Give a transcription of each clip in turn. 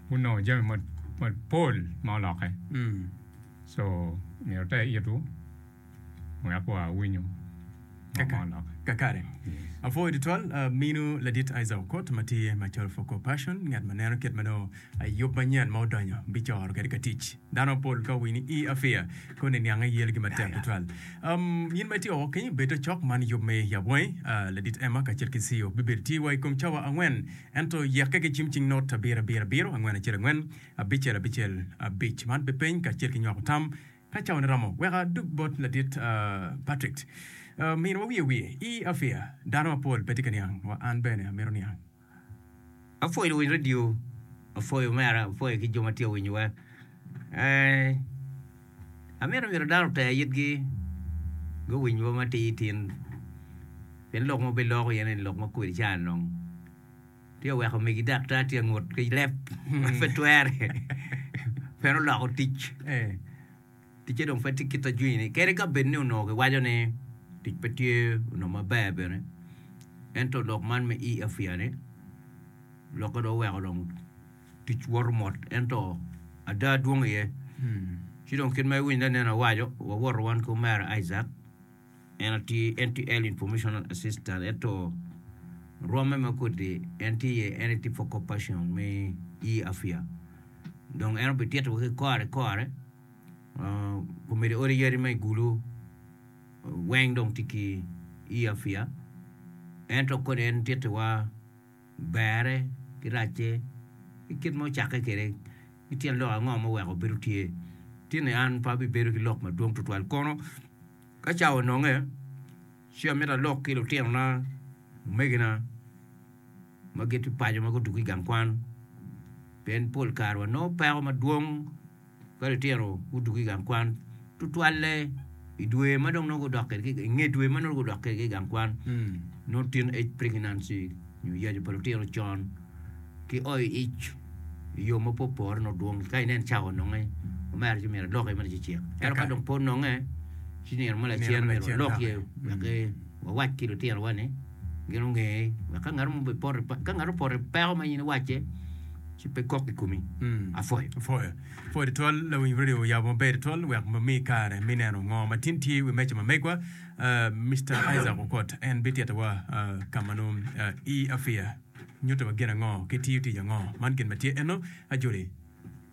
gunongo jami mapol ma olokke so myero oter itu wek wa winyo kakare. Apwoyo tutwal minu ladit Isaac Okot ma tye macol for corporation ngat ma neno kit ma nongo yub manyen ma odonyo bicoro kwede ka tic. Dano mapol ka owinyo ni i afia, koni niange yelgi matek tutwal. Um, nyin ma itye woko kenyi, bedo cok man yub me yabwangi. Uh, Ladit Emma kacel ki Ceo bibedo tye wa i kom cawa angwen, ento yekke ki cim cing not abiro abiro abiro, angwen acel angwen, abicel abicel abic. Man pe peny kacel ki nywako tam ka cawane romo. Wek adug bot Ladit, uh, Patrick. Uh, miniwa wiye wiye, i afia, dano mapol pe tye ka niang, wa an bene amito niang. apwoyo luwiny radio, apwoyo omera, apwoyo ki jo ma tye ka winyo wa. Amito myero dano oter itgi guwiny wa matir tin pien lok ma wubiloko iye ni lok ma kwede ca dong tye ka weko megi daktar tye ka ngut ki leb ma pe twere pien oloko tic. Ticce dong pe tye kit a jwinyi, kadi ka bed ni onongo kiwaco ni tic pe tye onongo maber bene. Ento lok man me EFYA-ni lokke dong oweko dong tic woto mot ento ada dwong iye. Ci dong kit ma iwinyo anena awaco, wawoto wan ki omera Isaac En aye tye NTL Informational Assistant ento rwomme ma kodi en tye iye en aye tye Focal Person me Year Afya dong en obitito wa ki kore kore komiti odi yadi ma i Gulu weng dong tye ki Year Afya ento kodi en tittiwa Berre ki racce i kit ma ocakke kwede ki tyen lok ango ma oweko bedo tye. Tinni an pe abibedo ki lok madwong tutwal kono ka cawa ononge ci amito alok ki lutinona, omegina ma giti paco ma gudugo i gang kwan pien pol kare wanongo peko madwong. Ka litino gudwogo ki i gang kwan tutwalle i dwe ma dong nongo gudok kwede i nge dwe ma nongo gudok kwede ki i gang kwan nongo teen age pregnancy nyo yacu pa litino con ki o i ic i yo ma pe opore nongo dwong ka inen cawa ononge omera ci myero aloki mere ci cit ento ka dong pe ononge ci nino mo lacen myero walok iye wek wawac ki litinowa ni Gin onge wek ka ngat mo bipoto ka ngat opoto i peko ma in iwacce ci pe kok i komi. Apwoyo. Apwoyo. Apwoyo tutwal lawiny radio oyabo maber tutwal wek mi kare mi neno ngo matin tye wi meja ma megwa uh, Mr. Isaac Okot en bititowa uh, ka ma nongo uh, i afiya nyuto wa gin ango ki tiyo tic ango man gin ma tye eno ajoli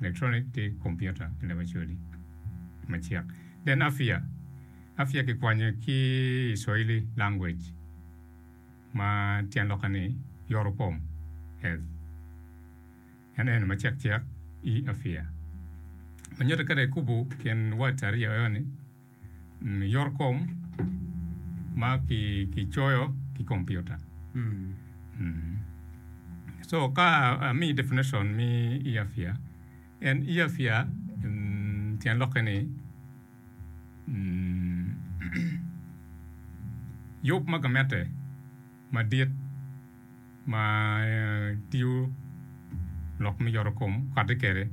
Electronic ki kompiuta ki labacodi macek. Then Afia, Afia kikwanyo ki i Swahili language ma tyen lokke ni yoro kom, health. En eno macek cek i Afia. Manyotte kede ikubu kin wat aryo eo ni. Yorkom ma kicoyo ki kompiuta. So ka amiyi definition me earfear, en earfear tyen lokke ni yub ma gamente madit ma tiyo lok me yorokom kati kwede.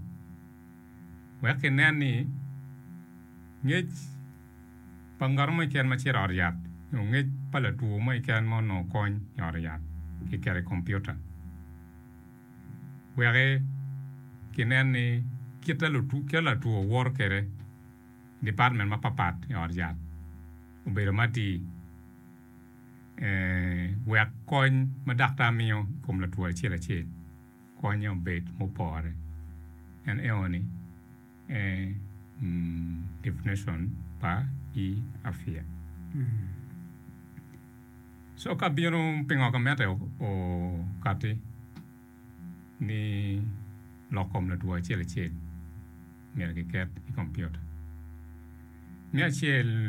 wek kinen ni ngec pa ngat mo keken ma cito i ot yat nyo ngec pa latwo mo keken ma onongo kony i ot yat kiketo i kompiuta. Wek kinen ni kite ma latwo woto kwede i department mapatpat i ot yat obedo matir wek kony ma daktar miyo i kom latwo acel acel. Konye obed mupore. En eo ni definition pa i afia. So ka bino pingo ka mete okati ni lok kom latwo acel acel myero ki ket i computer. Me acel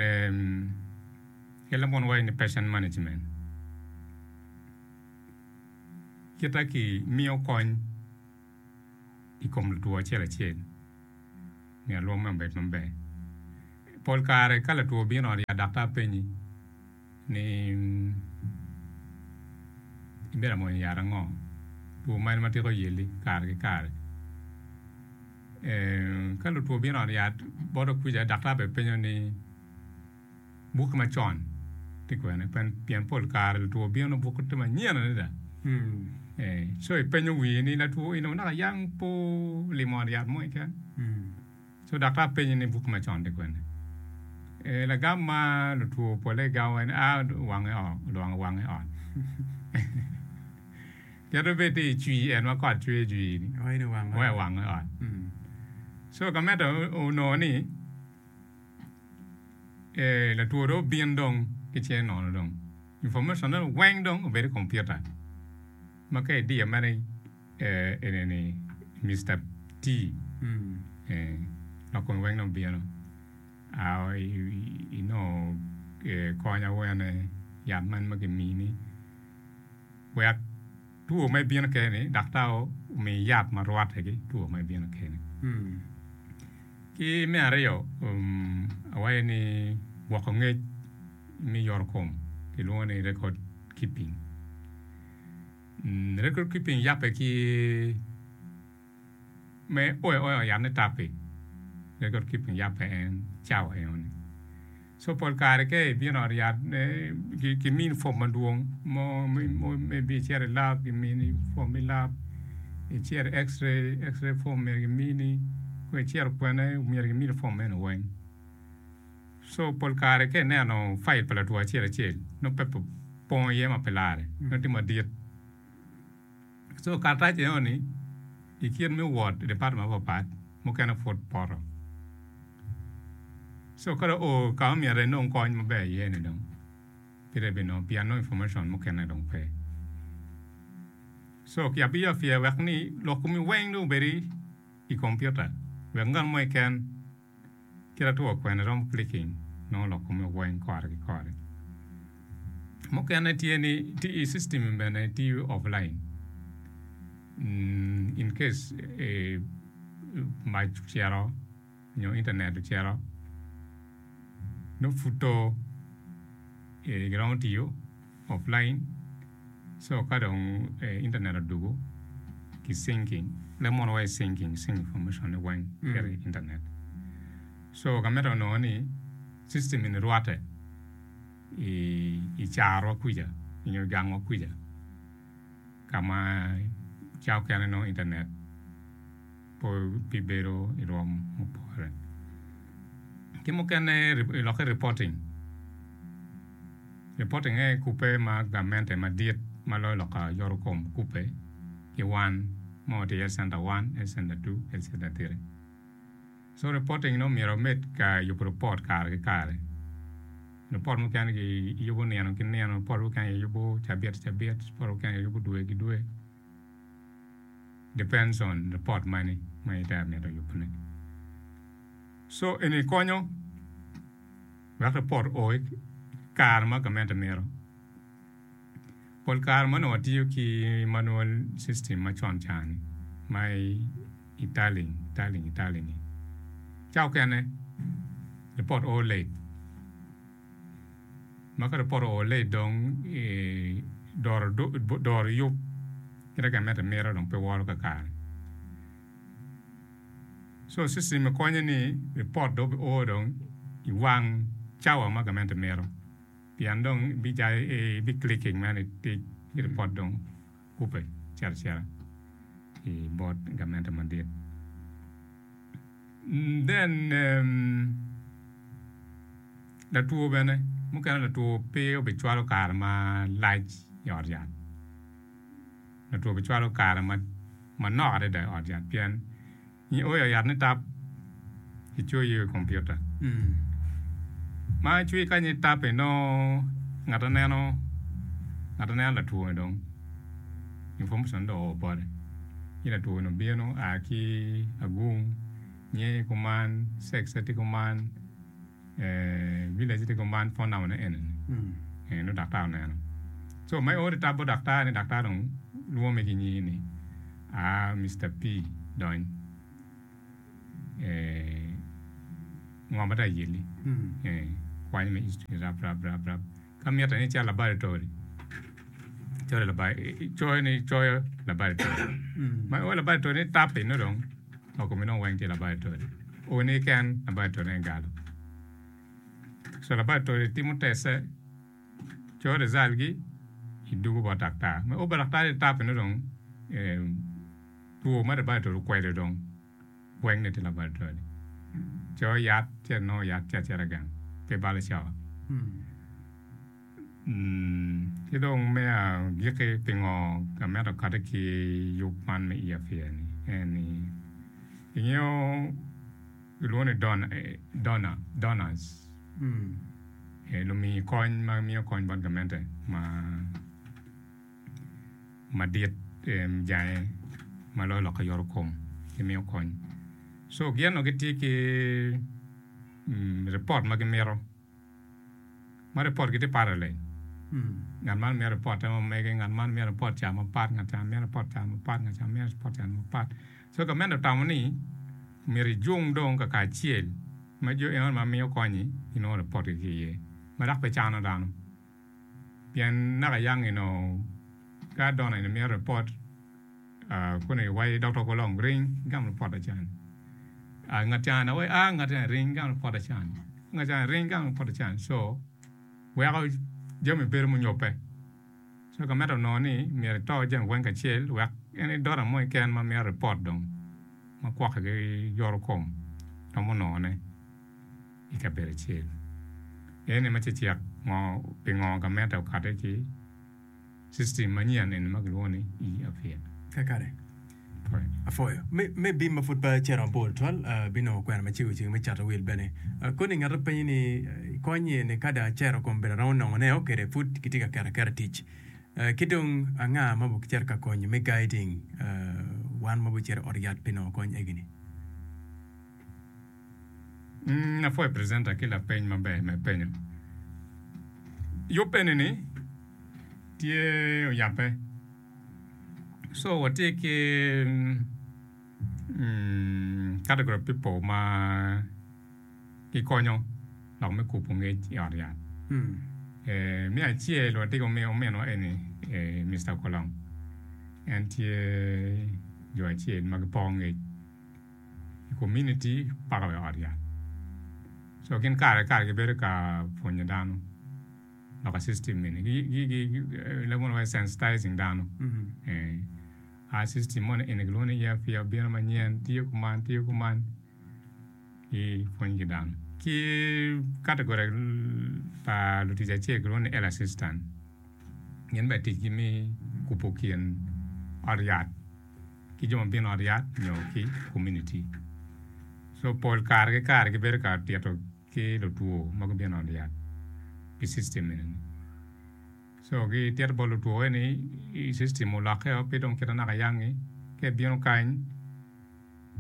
ki lambongo ni patient management. kita ki miyo kony i kom latwo acel acel nyo alwom me obed maber. Pol kare ka latwo obino ot ya daktar penyi ni ibedo ka mwonyo yat ango, two mene ma tika oyelli kare ki kare. Ka lutwo obino ot yat bote kwica daktar bene penyo ni. Bukke macon tye kwene pien pol kare lutwo bino bukke tye manyen adada. Co ipenyo wii ni latwo in naka yang pe olimo ot yat mo keken. Co daktar penyi ni bukke macon tye kwene. Lagam ma lutwo pole gamo en ni a wange oo odongo wange ot. Kit ma bed ni icwi en ma kot cwer icwi ni wange ot. Co ka medo onongo ni. Eeh latwo dong obin dong ki cinge nono dong information ne weng dong obedo i computer ma ka idiyo mere eeh eni ni Mister T lok kome weng dong bino aa inongo kony awene yat man ma kimini wek Two ma ibino kene ni daktar omiyi yat ma rwatte ki two ma ibino kene. Ki me aryo, awaco ni gwoko ngec me yoro kom kilwongo ni record keeping. Record keeping yabbe ki me oya oya yat ne tapi pe kor kip kin yat pe en cawa eno ni so pol kare ke ibino ot yat ne ki min form madwong mo me bi ceri lab ki mini form me lab iceri x-ray x-ray form myero ki mini kong icero kwene myero ki mini form meno weng so pol kare ke ineno file pa latwo acel acel nongo pe pongo iye ma pe lare nongo tye madit So karatac enoni i kit me wot i department mapat pat mukene pud poto. So kadi oo ka ma myero enong kony maber iye ni dong pud ebinongo pien nongo information mukene dong pe. So ki abiyo apyer wek ni lok komi weng dong obedi i kompiuta wek ngat mo keken Kit atwo kwene romo clicking nongo lok kome weng kore ki kore. Mukene tye ni tye i system bene tye offline. Mm, in case e, mac ocito nyo internet ocito, nongo pud to e, giromo tiyo. offline so ka dong internet odugu ki syncing le mono wa i syncing sync information ne weng kit i internet so ka medo nongo ni system eni rwate i i carwa kuca nyo gang wa kuca ka ma ca okene nongo internet po pi bedo i rwom mupore. Ki mukene i lokke reporting, reporting aye kubbe ma gamente madit ma loyo loka yoto kom kubbe ki wan ma watye i health center one, health center two, health center three. So reporting ni omyero wamed ka yubo report kare ki kare. Report mukene kiyubo nino ki nino, report mukene kiyubo cabit ki cabit, report mukene kiyubo dwe ki dwe. depends on report mani ma ite amito yubune. So eni konyo wek report o i kare ma gamente mito. Pol kare ma onongo watiyo ki manual system ma con cani ma i taling taling taling-ngi ca okene report o late. ma ka dong poto oole i dong i doro yub kit ma gamente mito dong pe woro kakare so system ni konyo ni ripot dong obi o dong i wang cawa ma gamente mito pien dong ibi clicking mere ni tic ci ripot dong kubbe cito acita i bot gamente madit. Mm then um, latwo bene mukene latwo pe obicwalo kare malac i ot yat latwo obicwalo kare ma manok adada i ot yat pien nyo o i ot yat ni tap icoyo i kompiuta ma cwi kany itap inongo ngate neno ngate neno latwo-ni dong Information dong oo bote ni latwo ni obino a ki agung, nge kuman, sex ne tye kuman, village ne tye kuman, phone number ne ene ni. Nongo daktar oneno. So ma ior itab bot daktar ni daktar dong lwome ki nyingi ni a Mister P dony ngo ma tye ayelli. Kwanye me history ni rab rab rab. Ka mitte ni ical labal tol, coyo labal, coyo ni icoyo labal tol. Ma iwo labal tol ni tapi nongo dong ma kome nongo weng tye labal tol. Uni keken labal tol en galo. So labal tol itimo teste, coyo rizal gi, idugu bot daktar. Ma iwo bot daktar ni tapi nongo dong two ma labal tol okwedo dong. weng ni tye laboratory co yat ce nongo yat ce acita gang pe balo co ki dong me agiki pingo amito kati ki yub man me ear fear ni en ni ingeyo kilwongo ni donor donors lumi kony ma miyo kony bot gamente ma madit jange ma loyo lok ki yoto kom ki miyo kony so gin onongo gitye ki ripot ma gimito ma ripot gi tye pare leng ngat man mito ripot te ma mege ngat man mito ripot ca mapat ngat ca mito ripot ca mapat ngat ca mito ripot ca mapat so gamente otamo ni myero ijung dong kakacel ma jo eno ma miyo konyi ginongo ripot gi ki iye ma dok pe cano dano. pien naka yang inongo ka dona in imito report kuni iwaci dokta kulu long ring igam report acan ngat ca ni waci aa ngat eni ring igam report acan ngat cani ring igam report acan so weko jami bedo munyobbe so ka medo nongo ni myero ito jami weng kacel wek en i dota mo keken ma mito report dong ma kwokke ki yoro kom romo nongone. i kabedo acel. En ni ma cecek ngo pingo gamente okate ki system manyen eni ma kilwongo ni e-Afia. Kakare. Apwoyo. Apwoyo. Me, me bim ma pud pe cito mabor twal, abinongo kwena ma cego ceng me cato wil bene. Koni ngat openyi ni konye ni ka dong acero kom bedo aromo nongo ne o kede pud kitye ka keto aketa tic. Ki dong anga ma bu cito ka konyo me guiding wan ma bu cito ot yat pi nongo kony egini? Mm, apwoyo e presenter ki lapeny maber me penyo. Yub eni ni tye oyape. So watye ki mm, category of people ma gikonyo lok me kubo ngec i ot yat. Mm. Eh, me acel watye ki omi- ominwa eni eh, Mr. Kolong. En tye jo acel ma gipoko ngec. i komuniti paka wa i ot yat. Co gin kare ki kare gibedo ka pwonyo dano lok i system eni. Gilwongo ni sensitizing dano. A system moni eni kilwongo ni ear fear obino manyen, tiyo kuman, tiyo kuman. Gipwony ki dano. Ki category pa lutic acel kilwongo ni elder assistant. Gin bene ticgi me kubo kin ot yat. ki jo ma bino i ot yat nyo ki komuniti. So pol kare ki kare gibedo ka tito ki lutwo ma gubino i ot yat pi system eni ni. So gitito bot lutwo eni system olokke o pe dong kit ma naka ayangi ka ibino kany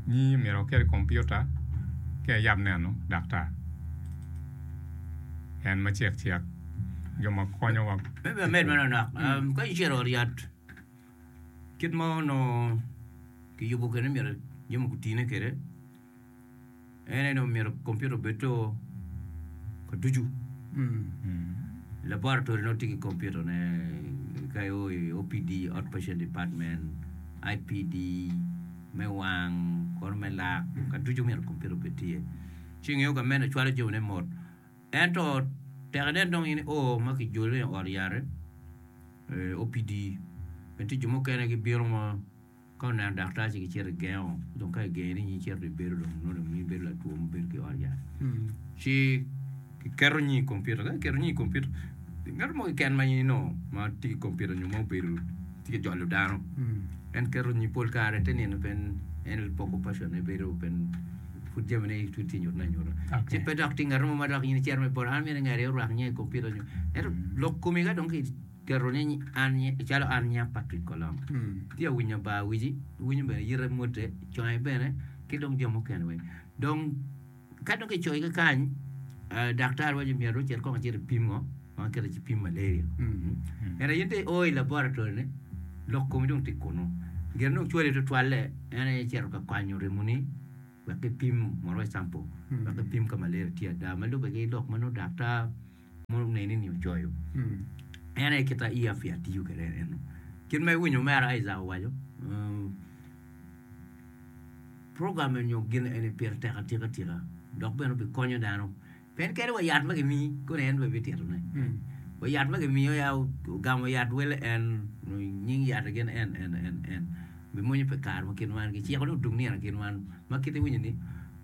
nyi myero okel kompiuta ci ayab neno daktar en ma cek cek jo ma konyowa. Kit ma onongo kiyubo kwede myero jami gutine kwede en aye dong myero kompiuta obed to ka ducu. Laboratory nongo tye ki kompiuta ne ka i o- i OPD, Outpatient Department, IPD, me wang, kono me lak ka ducu myero kompiuta obed tye. Ci ngeyo ka meno cwalo jamine mot. Ento tek inen dong in i oo ma kijole i ot yare, ee, opidi, pien tye jo mukene gibino ma ka oneno daktar ci gicito gigengo, ci dong ka igengi ni in icito ibedo dong nongo dong in ibedo latwo ma obedo ki i ot yat. Ci kiketo nying i kompiuta, ka kiketo nying i kompiuta, ngat mo keken ma in inongo ma tye ki kompiuta nyo ma obedo Tye ka jolo dano. En keto nyi pol kare te nino pen en poko passion ne bedo pen pud jami ne tut tye nyuto na nyuto. Okay. Ci pe dok tye ngat mo ma dok in cero me bolo an mene ngari orak nye i computer nyo. Ento lok komi ka dong ki keto ni an nye calo an nya Patrick Kolom. Tye awinyo ba wici, winyo bene yite mote, conge bene ki dong jo mukene weng. Dong Ka dong kicoyo ki kany, daktar waco myero dong ocit kong ecit epim ngo ma kite ci pim malaria. Ento in dong io i laboratory ni lok komi dong tye kunu. Gin dong cwali tutwalle en aye cito ka kwanyo remoni wek kipim mondo waco sample wek kipim ka malaria tye ada ma lubbe ki lok ma nongo daktar Mono neni ni ocoyo. Mm. En aye kita i afia tiyo kede en eno. Kit ma iwinyo mera Isaac owaco, um, program nyo gin eni pire tek atika tika dok bene bi konyo dano pen kede wa yat ma gimi kone en bene bityetone mm. wa yat ma gimiyo ya ogamo yat wele en nying yat gin en en en en bimonyo pe kar ma kin wan giciko ni odung nino kin wan ma kite winyo ni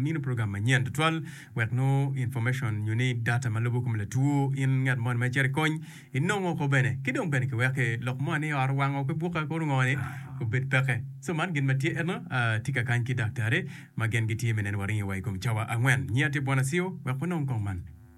Mino program manyen tutwal wek nongo information nyo ni data ma lubo kom latwo in ngat moni ma icito i kony inongo ko bene ki dong bene ki weke lok moni i ot owango pe buka kuru ngo ni obed peke so man gin ma tye eno atye ka kany ki daktari ma gen gitye me neno waringi wa i kom cawa angwen. Nyiya tye Bwana Siyo wek wanong kong man.